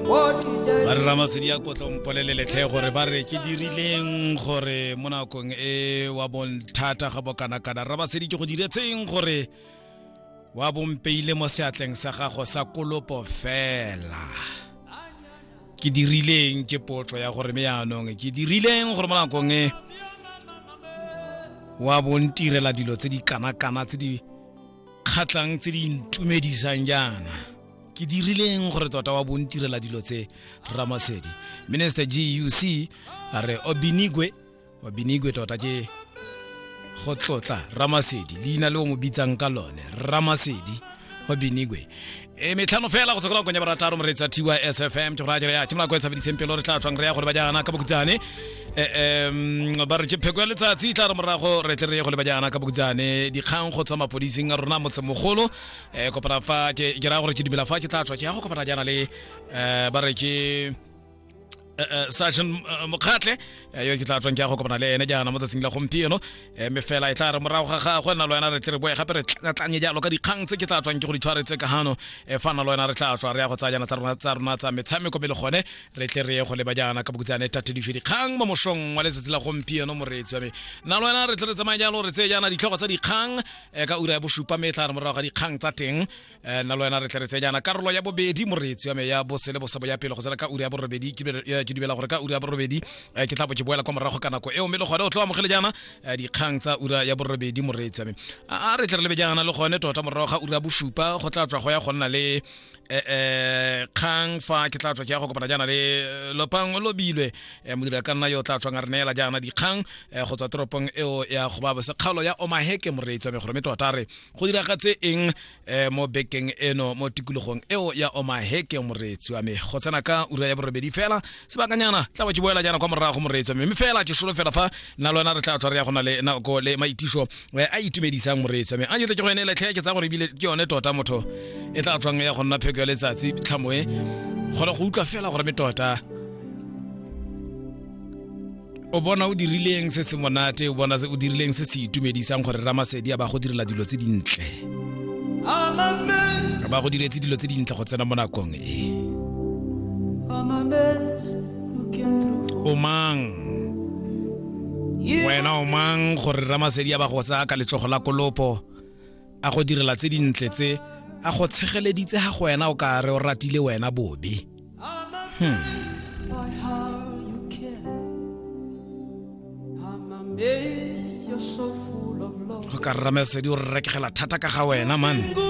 ba re ramasedi ya kotlo mpolele letlhe gore ba re ke dirileng gore mo nakong e wa bonthata ga bokanakana ramasedi ke go diretseng gore wa bompeile mo seatleng sa gago sa kolopo fela ke dirileng ke potso ya gore me yaanong ke dirileng gore mo nakong e wa bontirela dilo tse di kanakana tse di kgatlhang tse di ntumedisang jaana ke dirileng gore tota wa bontirela dilo tse ramasedi minister guc a re obinigwe obinigwe tota ke go tlotla ramasedi leina le o mo bitsang ka lone ramasedi obinigwe e metlhano fela go tsekela konya barataro moreetsa tys fm ke go raya jalo ya ke molako e tshabediseng pelo re tla tswang re ya go le bajana ka bokutsane um ba re ke pheko ya letsatsi e tla re morago re tle re ye go le bajana ka bokutsane dikgang go tswa mapodising a rona motsemogolo um kopana fa ke ke raya gore ke dumela fa ke tla tswa ke ya go kopana jaana le um ba re ke Eh, eh, sergeant eh, mokgatlhe eh, yo ke tla tswang ke ya go kopana le ene jaana mo tsatsing la gompieno eh, mme fela e tla re morago ga gagwe na le wena re tle re boe gape re tlatlanye jalo ka dikgang tse ke tla tswang ke go di tshwaretse ka gano eh, fa na le wena re tla tswa re ya go tsaya jana tsa rona tsa rona tsa metshameko mme le gone re tle re ye go leba jaana ka bokutsane tatedife dikgang mo mosong wa letsatsi la gompieno moreetsi wa me na le wena re tle re tsamaye jalo re tseye jaana ditlhogo tsa dikgang eh, ka ura ya bosupa mme e tla re morago ga dikgang tsa teng Eh, nna le wena re tle re tsenyana karolo ya bobedi moreetsi wa me ya bose le bosebo ya pele go tsena ka uri ya borobedi ke eh, dubela gore ka uri ya borobedi eh, ke tla bo ke boela kwa morago ka nako eo mme le gone o tlo amogele jaana dikgang tsa ura ya borobedi moreetsi wa me a re tle re lebe jaana le gone tota morago ga ura bosupa go tla tswa go ya go nna le um kgang fa ke tla tswa ke ya go kopana jaana le lopang lobilwe modira ka nna yo o tla tswang a re neela jaana dikgang go tswa toropong eo ya go ba bosekgalo ya omaheke moreetsi wa me gore mme tota re go diragatse eng eh, mo bekeng eno mo tikologong eo ya omaheke moreetsi wa me go tsena ka ura ya borobedi fela sebakanyana tla ba ke boela jaana kwa morago moreetsi wa me mme fela ke solo fela fa nna lona re tla tswa re ya gona le nako le maitiso eh, a itumedisang moreetsi wa me a jetle ke go ene letlhe ke tsa gore ebile ke yone tota motho e tla tswang ya go nna pheko ya letsatsi tlhamoe kgone go utlwa fela gore me tota o bona o dirileng se se monate o bona o dirileng se se itumedisang gore ramasedi a ba go direla dilo tse dintle ba go diretse dilo tse dintle go tsena mo nakong e o mang wena o mang gore ramasedi a ba go tsaya ka letsogo la kolopo a go direla tse dintle tse a go tshegeleditse ga go wena o ka re o ratile wena bobe hmm. o ka rramesedi o rekegela thata ka ga wena man